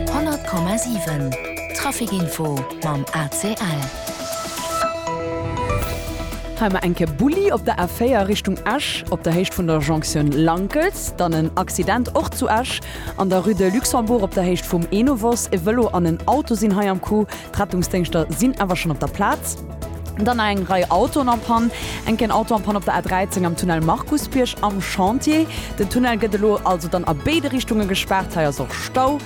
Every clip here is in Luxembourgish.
100,7 Trafic Info mam ACL. Hei mar enke Bulli op der A4 Richtung Esch op der Héicht vun der Jonction Lankels, dann en Accident och zu Esch an der Rue de Luxembourg op der Héicht vum Enovos. E Vëlo an en Auto sinn hei am Coup, d'Rettungsdéngschter sinn awer schonn op der Plaz. Dann nach eng Rei Autoen en panne. Enk en Auto en panne op der A13 am Tunnel Markusbierg am Chantier. Den Tunnel gëtt elo also dann a béide Richtunge gespaart. Hei ass och Stau.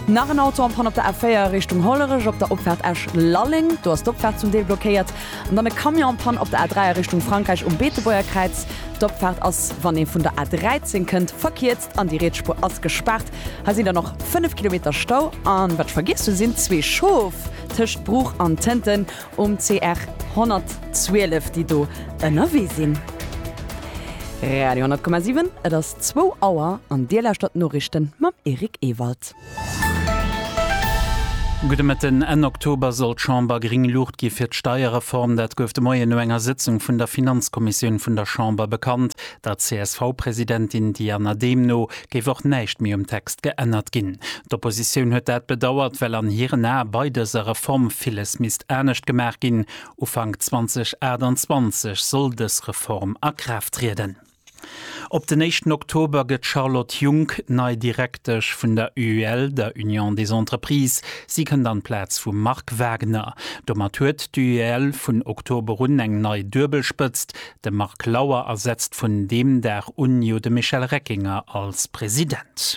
Nach en Auto en panne op der A4 Richtung Hollerech op der Opfaart Esch-Lalleng. Do ass d'Opfaart zum Deel blockéiert. An dann e Camion en panne op der A3 a Richtung Frankräich um Beetebuerger Kräiz. D'Opfaart ass, wann ee vun der A13 kënnt, verkiert. An déi Rietsspuer ass gespaart. Hei sinn dann och 5 Kilometer Stau. An wat ech vergiess hunn, sinn zwee Schof tëscht Bruch an Tënten um CR 112, déi do ënnerwee sinn. Radio 100,7, et ass zwou Auer an Dir lauschtert d'Noriichten mam Eric Ewald. Gudde Mëtten. Enn Oktober soll d'Chamber gréng Luucht gi fir d'Steierreform. Dat gouf de Moien no enger Sëtzung vun der Finanzkommissioun vun der Chamber bekannt. Der CSV-Presidentin Diana Dehm no géif och näischt méi um Text geännert ginn. D'Oppositioun huet dat bedauert, well an hiren Ae bei dëser Reform villes misst anescht gemaach ginn. Ufank 2028 soll dës Reform a Kraaft trieden. Op den éischten Oktober gëtt d'Charlotte Junck nei Direktesch vun der UEL, der Union des Entreprises. Si kënnt an d'Plaz vum Marc Wagner. Domat huet d'UEL vun Oktober un eng nei Duebelspëtzt, de Marc Lauer ersetzt vun deem Dag un jo de Michel Reckinger als President.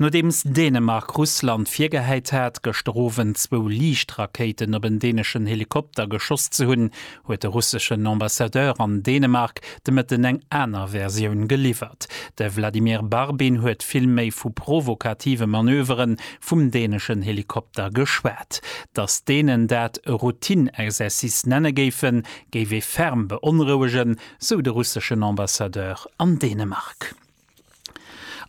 Nodeems Dänemark Russland virgehäit hat, gëschter Owend zwou Liichtrakéiten op en däneschen Helikopter geschoss ze hunn, huet de russeschen Ambassadeur an Dänemark de Mëtten eng aner Versioun geliwwert. De Vladimir Barbin huet vill méi vu provokative Manövere vum däneschen Helikopter geschwat. Datt d'Dänen dat e Routine-Exercice nenne géifen, géif ee ferm beonrouegen, sou de russeschen Ambassadeur an Dänemark.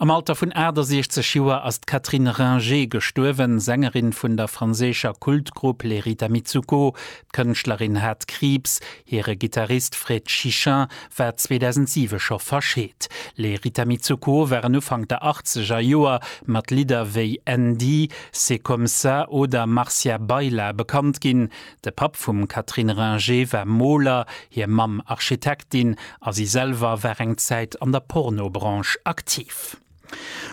Am Alter vun 68 Joer ass d'Catherine Ringer gestuerwen, Sängerin vun der franséischer Kultgrupp Les Rita Mitsouko. D'Kënschtlerin hat Kriibs. Hire Gittarist Fred Chichin war 2007 scho verscheet. Les Rita Mitsouko waren Ufank der achtzeger Joer mat Lidder wéi Andy, C'est comme ça oder Marcia Baila bekannt ginn. De Papp vum Catherine Ringer war Moler, hir Mamm Architektin a si selwer war eng Zäit an der Pornobranche aktiv.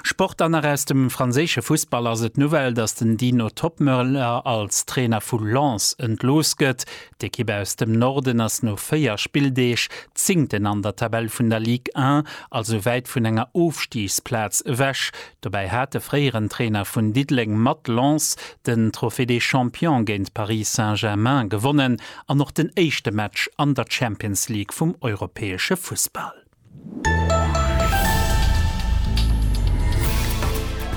Sport An nach aus dem franséische Fussball ass et d'Nouvelle, datt den Dino Toppmöller als Trainer vu Lens entlooss gëtt. D'Ekipp aus dem Norden ass no 4 Spilldeeg Zéngten an der Tabell vun der Ligue 1, also wäit vun enger Ofstigsplaz ewech. Dobäi hat de fréieren Trainer vun Diddeleng mat Lens den Trophée des Champions géint Paris Saint-Germain gewonnen an och den éischte Match an der Champions League vum europäesche Fussball.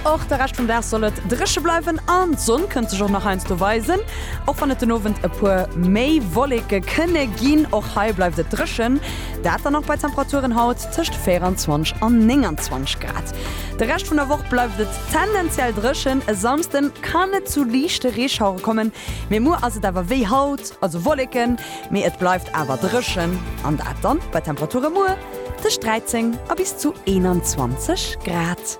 Och de Rescht vum Dag soll et dréche bleiwen an d'Sonn kënnt sech och nach heiansdo weisen, och wann et den Owend e puer méi Wolleke kënne ginn. Och hei bleift et dréchen, dat dann och bei Temperaturen haut. tëscht 24 an 29 Grad. De Rescht vun der Woch bleift et tendenziell dréchen, e Samsden kann et zu liichte Reeschauere kommen, mee muer ass et awer wéi haut, also Wolleken, mee et bleift awer dréchen an dat dann bei Temperature muer tëscht 13 a bis zu 21 Grad.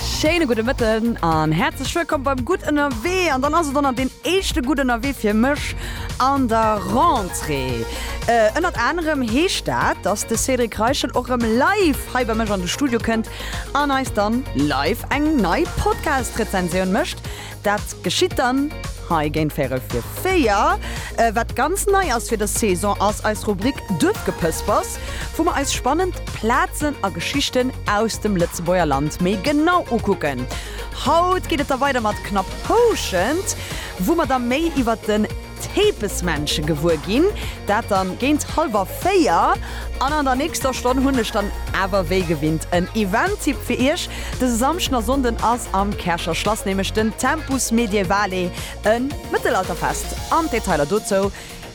Schéine gudde Mëtten an häerzlech wëllkomm beim Gutt Ënnerwee. An dann ass et ënnert deen éischte Gutt Ënnerwee fir mech an der Rentrée. Ënnert anerem heescht dat, dass de Cédric Reichel och rëm live hei bei mech an de Studio kënnt an eis dann live eng nei Podcast-Rezensioun mécht. Dat geschitt dann hei géint véirel fir véier. Wat ganz nei ass fir dës Saison ass eis Rubrik Duerfgepëspers, wou mer eis spannend Plazen a Geschichten aus dem Lëtzebuerger Land méi genau ukucken. Haut geet et da weider mat Knapp Houschent, wou mer da méi iwwert den. Tepesmännche gewuer ginn, dat dann géint halwer 4, an an der nächster Stonn hunn ech dann awer wéi gewinnt en Event-Tipp fir iech. Dëse Samschden a Sonnden ass am Käercher Schlass nämlech den Tempus Medievale, e Mëttelalterfest, an d'Detailer dozou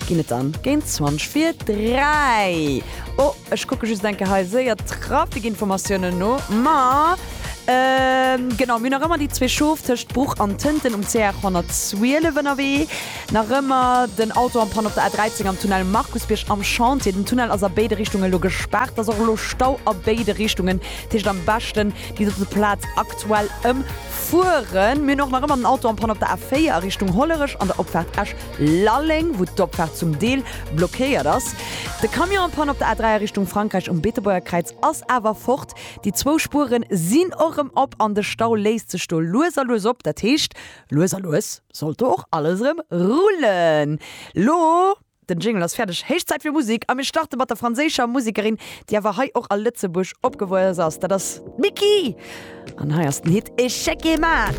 ginn et dann géint 20 vir 3. Ech kucke just enke hei séier Trafikinformatiounen no, ma genau, mir hunn nach ëmmer déi zwee Schof tëscht Bruch an Tënten um CR 112 ënnerwee, nach ëmmer den Auto en panne op der A 13 am Tunnel Markusbierg am Chantier. Den Tunnel ass a béide Richtunge lo gespaart, et ass och elo Stau a béide Richtungen. Dat heescht am beschten déi dote Plaz aktuell ëmfueren. Mir hunn och nach ëmmer den Auto en panne op der A 4 a Richtung Hollerech an der Opfaart Esch Lalleng, wou d'Opfaart zum Deel blockéiert ass. De Camion en Panne op der A3 a Richtung Frankräich um Beetebuerger Kräiz ass awer fort. Déi zwou Spuere sinn och erëm op an de Stau léisst sech do lues a lues op. Dat heescht, lues a lues sollt do och alles erëm rullen. Lo, den Jingle ass fäerdeg, héich Zäit fir Musek a mir starte mat der franséischer Musekerin, déi awer hei och a Lëtzebuerg opgewuess ass. Dat ass d'Micky an hei ass den Hit Echec et Mat.